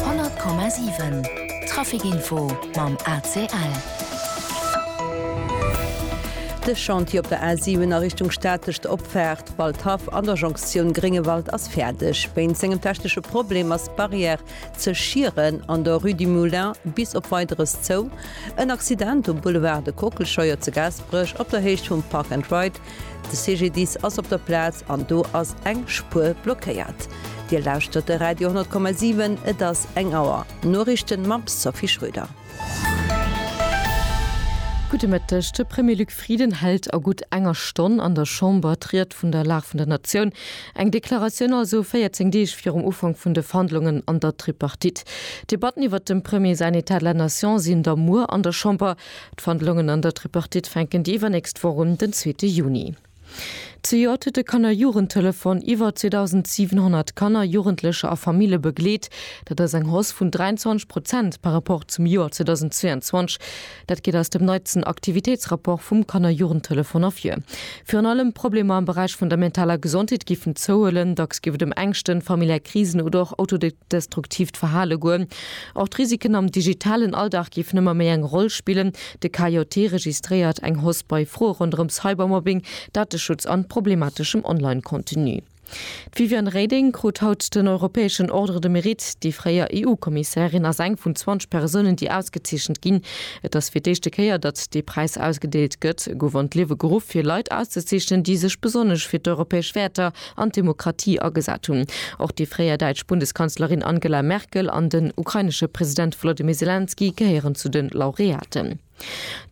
100,7 Trafikinfo mam ACL. De Chantier op der A 7 a Richtung Statecht Opfaart Waldhaff an der Jonktioun Gréngewald ass fäerdeg. Wéinst engem technesche Problem ass d'Barrière ze Schieren an der Rue du Moulin bis op Weideres zou. En Accident um Boulevard de Kockelscheuer zu Gaasperech op der Héicht vum Park and Ride De CGDIS ass op der Plaz an do ass eng Spuer blockéiert. Dir lauschtert de Radio 10,7, et ass eng Auer. Noriichten mam Sophie Schröder. Gudde Mëtteg. De Premier Luc Frieden hält a gutt enger Stonn an der Chamber d'Ried vun der Lag vun der Natioun. Eng Deklaratioun also 14 Deeg virum Ufank vun de Verhandlungen an der Tripartite. D'Debatten iwwert dem Premier säin État de la Nation sinn da muer an der Chamber. D'Verhandlungen an der Tripartite fänken déi iwwernächst Woch un, den zweete Juni. Zejoert huet de Kanner-Jugendtelefon iwwer 2.700 Kanner, Jugendlecher a Famille begleet. Dat ass eng Hausse vun 23 Prozent par Rapport zum Joer 2022. Dat geet aus dem neitsten Aktivitéitsrapport vum Kanner-Jugendtelefon ervir. Virun allem d'Problemer am Beräich vun der mentaler Gesondheet géifen zouhuelen. Dacks géif et ëm Ängschten, familiär Krisen oder och Autode. destruktiivt Verhale goen. Och d'Risiken am digitalen Alldag géifen ëmmer méi eng Roll spillen. De KJT registréiert eng Hausse bei Froe ronderëm Cybermobbing, Dateschutz an problemateschem Online-Contenu. D'Viviane Reding krut haut den europäeschen Ordre de Mérite. Déi fréier EU-Kommissärin ass eng vun 20 Persounen, déi ausgezeechent ginn. Et ass fir d'éischte Kéier, datt dee Präis ausgedeelt gëtt. E gouf an d'Liewe geruff, fir Leit auszezeechnen, déi sech besonnesch fir d'europäesch Wäerter, an d'Demokratie agesat hunn. Och déi fréier däitsch Bundeskanzlerin Angela Merkel an den ukrainesche President Volodymyr Selenskyj gehéieren zu de Laureaten.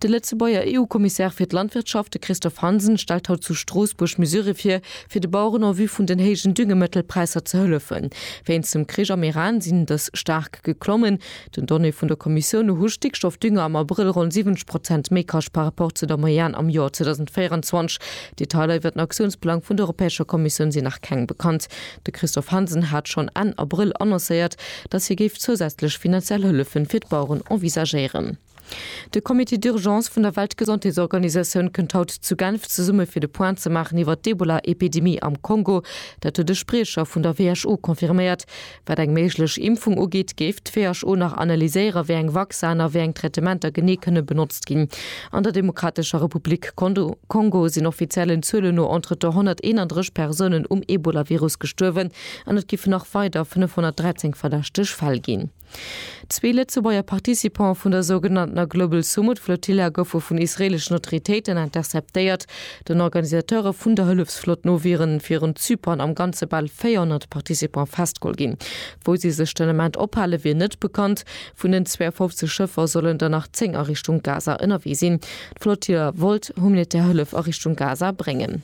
De Lëtzebuerger EU-Kommissär fir d'Landwirtschaft, de Christophe Hansen, stellt haut zu Stroossbuerg Mesurë vir, fir de Baueren en vue vun den héijen Düngemëttelpräisser ze hëllefen. Wéinst dem Krich am Iran sinn dës staark geklommen. Den Donnéeë vun der Kommissioun no hu Stickstoffdünger am Abrëll ronn 70 Prozent méi kascht par rapport zu der Moyenne am Joer 2024. Detailer iwwer den Aktiounsplang vun der Europäescher Kommissioun sinn nach keng bekannt. De Christophe Hansen hat schonn Enn Abrëll annoncéiert, datt hie géif zousätzlech finanziell Hëllefe fir d'Baueren envisagéieren. De Comité d'urgence vun der Weltgesondheetsorganisatioun kënnt haut zu Genf zesumme fir de Point ze maachen iwwert d'Ebola-Epidemie am Kongo. Dat huet e Spriecher vun der WHO confirméiert. Wat eng méiglech Impfung ugeet, géif d'WHO nach analyséieren, wéi eng Vacciner, wéi eng Traitementer genee kënne benotzt ginn. An der Demokratescher Republik Kongo sinn offiziellen Zuelen no entretemps 131 Persounen um Ebolavirus gestuerwen an et giffe nach weider 513 verdächteg Fäll ginn. Zwee Lëtzebuerger Participantë vun der sougenanntener Global Sumud Flotilla goufe vun israeeleschen Autoritéiten interceptéiert. Den Organisateure vun der Hëllefsflott no wieren virun Zypern am Ganze bal 400 Participantë festgeholl ginn. Wou si sech den Ament ophale wier net bekannt. Vun den 52 Schëffer sollen der nach 10 a Richtung Gaza ënnerwee sinn. D'Flotilla wollt humanitär Hëllef a Richtung Gaza bréngen.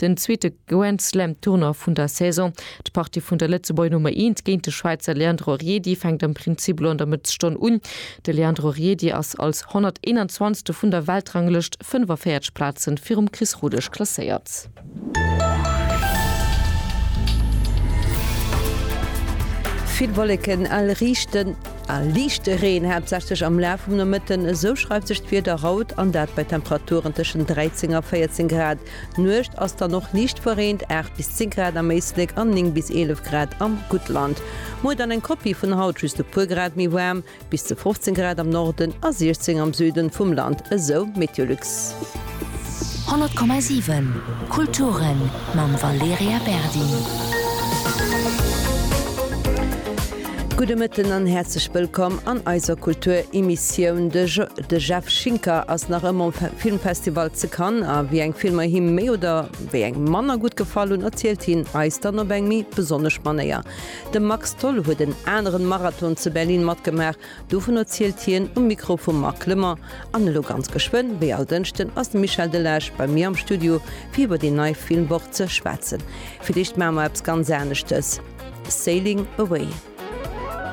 Den zweete Grand Slam Tournoi vun der Saison. D'Partie vun der Lëtzebuerger Nummer eent géint de Schwäizer Leandro Riedi fänkt am Prinzip elo an der Mëttesstonn un. De Leandro Riedi ass als 121. vun der Weltranglëscht 45 Plazen virum Chris Rodesch klasséiert. Vill Wolleken a liichten a liichte Reen, haaptsächlech am Laf vum Nomëtten, esou schreift sech d'Wieder haut an, dat bei Temperaturen tëschent 13 a 14 Grad. D'Nuecht ass dann och liicht verreent, 8 bis 10 Grad am Éislek an 9 bis 11 Grad am Guttland. Muer dann eng Kopie vun haut, just e puer Grad méi waarm, bis zu 15 Grad am Norden a 16 am Süden vum Land, esou Meteolux. 100,7 Kulturen mam Valerija Berdi. Gudde Mëtten an häerzlech wëllkomm an eiser Kulturemissioun. De Jeff Schinker ass nach ëmmer um Filmfestival ze Cannes a wéi eng Filmer him méi oder wéi eng manner gutt gefall hunn, erzielt hien eis dann op eng méi besonnesch Manéier. De Max Tholl huet en aneren Marathon ze Berlin matgemaach, dovun erzielt hien um Mikro vum Marc Lemon. An elo ganz geschwënn, wéi all Dënschden, ass de Michel Delage bei mir am Studio fir iwwer déi nei Filmwoch ze schwätzen. Fir d'éischt maache mer eppes ganz aneschtes, Sailing away!